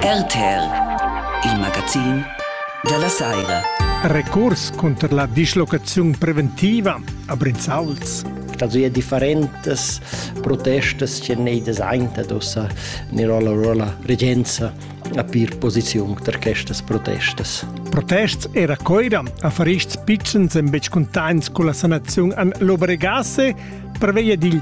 RTR, il magazin dalla Saira. Recurs cunter la dislocaziun preventiva a Brinzauls. Also ja differentes protestas che nei desainta dosa Nirola Rola regenza a pir posiziun tar questas protestas. Protests era coira a farists pitschens en betg cuntains con la sanaziun an l'Obregasse preveglia dil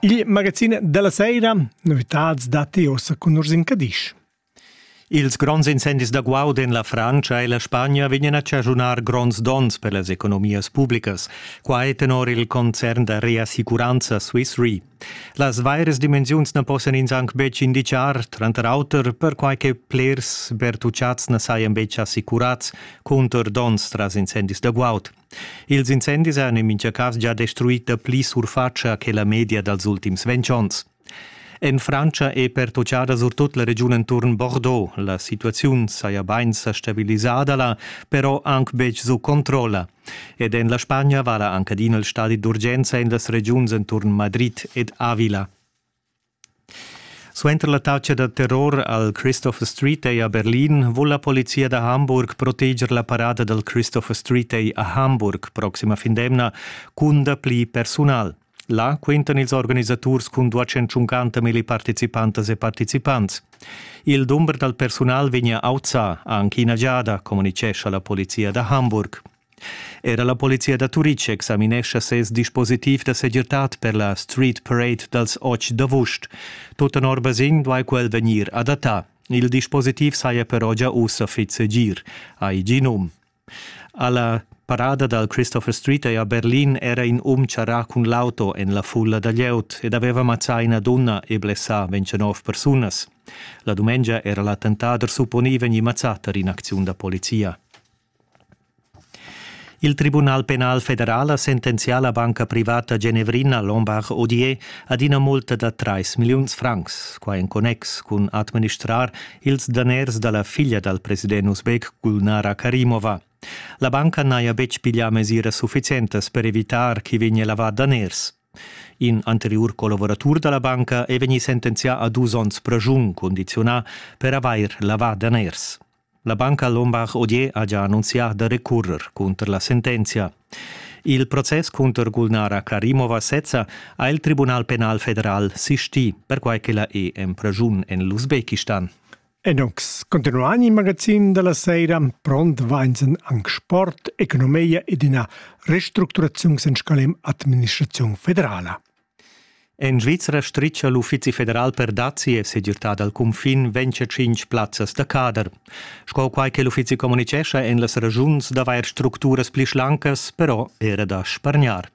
Il magazin della sera, novitads datti ossa cun Ursin Cadisch. Ils gronds incendis da guaud en la Frantscha e la Spagna vegnan a chaschunar gronds donns per las economias publicas. Qua è tenor il concern da reassicuranza Swiss Re. Las vaires dimensiuns na possan ins anc betg indicar, tranter auter perquai che plers bertucciats na sajan betg assicurads cunter donns tras incendis da guaud. Ils incendis han en mintga cas gia destruì dapli surfatscha che la media dals ultims ventg onns. En Frantscha è pertutgada surtut la regiun enturn Bordeaux. La situaziun saja bain sa stabilisada là, però anc betg sut controlla. Ed en la Spagna vala anc adina il stadi d'urgenza en las regiuns enturn Madrid ed Avila. Suenter la tatscha da terror al Christopher Street Day a Berlin vul la polizia da Hamburg proteger la parada dal Christopher Street Day a Hamburg proxima fin d'emna cun dapli persunal. Là quintan ils organisaturs cun 250 milliparticipantas e participants. Il dumber dal persunal vegnia auzà anche ina giada, communitgescha la polizia da Hamburg. Era la polizia da Turitg examinescha ses dispositiv da segirtad per la Street Parade dals otg d'avust. Tut tenor basegn duai quel vegnir adattà. Il dispositiv saja però gia ussa fitg segir, hai gì num. Alla parada dal Christopher Street è a Berlin era in um charrà cun l'auto en la fulla da glieud ed aveva mazzà ina dunna e blessà 29 persunas. La dumengia era l'attentat supponì vegnì mazzà tar in'acziun da polizia. Il Tribunal penal federal ha sentenzià la banca privata genevrina Lombard Odier ad ina multa da trais milliuns francs, quai en connex cun administrar ils daners da la figlia dal president uzbek Gulnara Karimova. La banca n'haja betg piglià mesiras suffizientas per evitar ch'i vegnia lavà daners. In anteriur collaboratur da la banca è vegnì sentenzià a dus onns praschun, condizionà per avair lavà daners. La banca Lombard-Odier ha già annunzià da recurrer cunter la sentenzia. Il process cunter Gulnara Karimova sezza ha il Tribunal penal federal sistì, perquai che la è en pragiun en l'Usbekistan. Enox, continuan il magazin della sera, pront vainsen anc sport, economia ed ina restructuraziun en scalem administraziun federala. En Svizra stritga l'Uffizi federal per dazi e segirtà dal cunfin ventscha tschintg plazzas da cader. Sco quai che l'uffizi communitgescha en las regiuns d'avair structuras pli schlancas, però era da spargnar.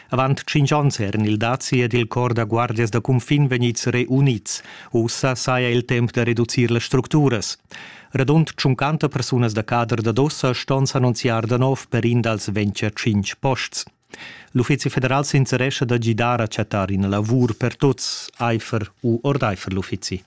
Avant cinc onns eran il dazi ed il cor da guardias da cunfin vegnids reunids. Ussa saja il temp da reducir las structuras. Radund 50 persunas da cader da Dossa ston s'annunziar da nov per in dals ventscha tschintg posts. L'Uffizi federal s'interescha da gidar a chattar ina lavur per tuts aifer u ordaifer l'uffizi.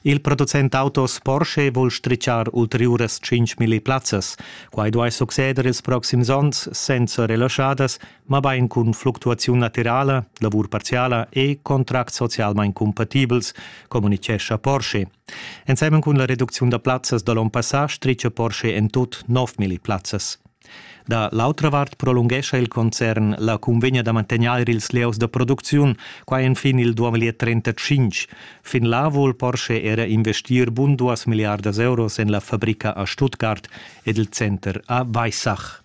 Il producent autos Porsche vul stritschar ulteriuras 5.000 plazzas. Quai duai succeder ils proxims onns senza relaschadas, mabain cun fluctuaziun laterala, lavur parziala e contracts socialmain cumpatibels, communitgescha Porsche. Ensemen cun la reducziun da plazzas da l'onn passà stritga Porsche en tut 9.000 plazzas. Da l'autra vart prolunghescha il concern la cunvegna da mantegnair ils lieus da producziun, quai enfin il 2035. Fin là vul Porsche era investir bun duas milliardas euros en la fabrica a Stuttgart ed il center a Weissach.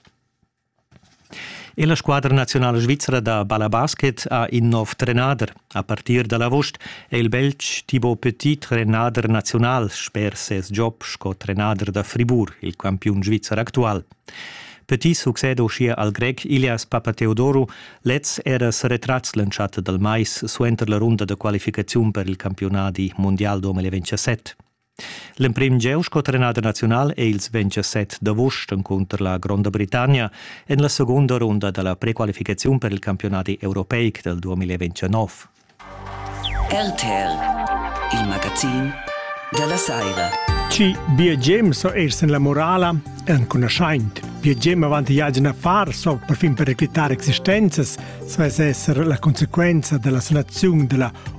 E la squadra nazionala svizra da balabasket ha in nov trenader. A partir da l'avost è il Belg Thibaut Petit trenader naziunal sper ses job sco trenader da Fribourg, il campiun svizzer actual. Petit succeda uschia al grec Ilias Papateodoru. Lez era seretratgs l'entschatta dal mais suenter la runda da qualificaziun per il campiunadi mundial 2027. L'emprim gieu sco trenader naziunal è il 27 d'avust encunter la Gronda Britannia en la segunda runda da la prequalificaziun per il campionadi europeic dal 2029. RTL, il magazin della Saira. Ci BGM so ers en la morala è anconoschaint. BGM avanti iagen a far so per fin per reclitare existenzas, sa es esser la conseguenza della sanazione della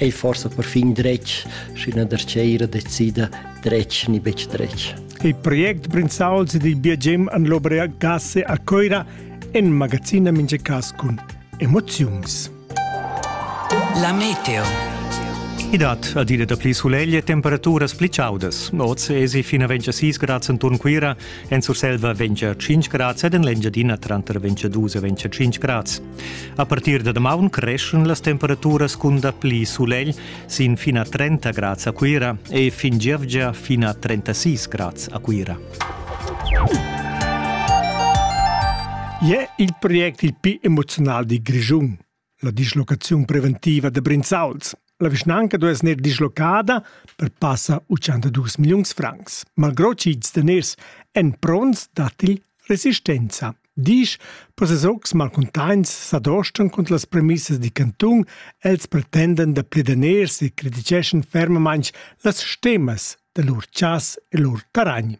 ei forsa perfin dretg, sch'üna darcheira decida dretg ni betg dretg. Il project Brinzauls ed il biagem an l'Obrea Gasse a Coira en magazina minge cas cun emoziuns. La meteo. I dat adina da pli sulegl e temperaturas pli chaudas. Oz esi fina 26 grads enturn Cuira, en Surselva 25 grads ed en l'Engiadina tranter 22 e 25 grads. A partir da damaun creschan las temperaturas cun dapli sulegl sin fin a 30 grads a Cuira e fin gievgia fin a 36 grads a Cuira. È il project il più emozional di Grischun, la dislocazione preventiva da Brinzauls. La vischnanca duess gnir dislocada per passa 82 milliuns francs. Malgrò ch'ils daners èn pronts, datti resistenza. Disch, processocs malcuntaints s'adostan cunter las premissas di cantun, els pretenden da pli daners e criticeschan fermamain las stemas da lur chas e lur taragn.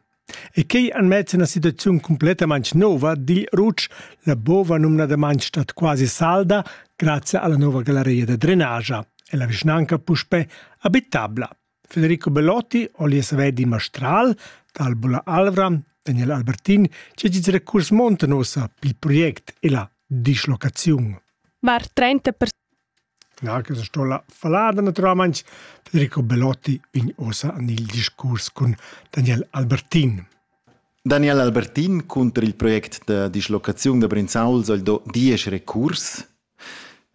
E quei han mess en una situaziun completamente nova, digl Rutsch, la bova numnadamain stat quasi salda grazie alla nuova galleria da drenagia e la vischnanca puspè abitabla. Federico Bellotti, alias Vedi Mastral, d'Albula Alvra, Daniel Albertin, c'è giz recurs monta nossa pil project e la dislocaziun. Var 30% Cler ch'el sto la fallada naturalmaing. Federico Belotti vegn uossa en il discurs cun Daniel Albertin. Daniel Albertin cunter il project da dislocaziun da Brinzau soll do diesch recurs.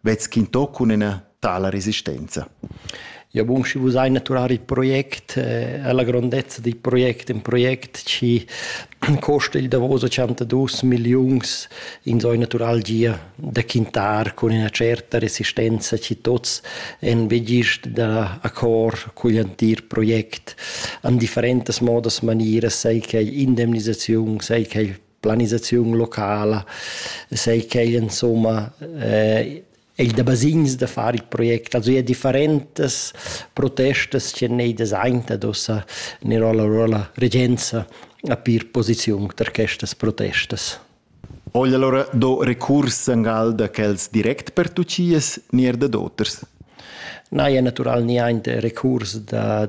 Vezz quintò cun ina tala resistenza? Ja bun, schi vus hai naturar il project, eh, la grondezza dil project, in project chi costa il davos 82 milliuns in so natural gia da quintar con ina certa resistenza chi tots en vegist da accord cugl antir project an differentas modas manieras, sei che indemnisaziun, sei che planisaziun locala, sei che insomma eh, ei da basegns da far il project, also ja differentas protestas che nei designt ad ossa ner alla rolla regenza a pir posiziun tar questas protestas. Ogl allora do recurs angal da quels direct per tucias nier da d'auters? Na, ja natural ni ein recurs da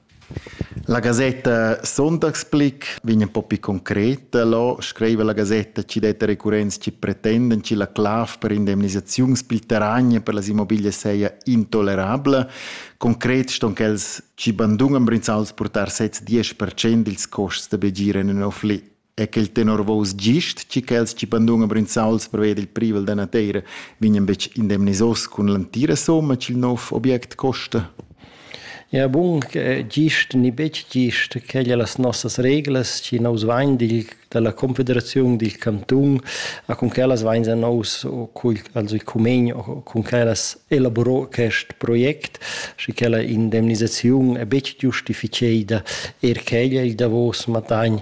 La gasetta Sonntagsblick vegn un po pi concreta là, scriva la gasetta chi det recurrents chi pretenden chi la clav per indemnisaziuns pil terragn per las immobiglias seja intolerabla. Concret ston quels chi bandunan Brinzauls purtar sez 10% dils costs da begir in ün afflì. e quel tenor vos gist, ci quels ci pandun brinzauls preved il privel da nateira vignan betg indemnisos cun l'antira somma ch'il nov object costa? Ja bun, gist ni betg gist, quelle las nossas reglas, ci nous vain dil, dalla confederaziun dil canton, a con quellas vain a nous also il cumen con quellas elaboro quest project, schi quella indemnisaziun è betg giustificeida, er quella il davos matagn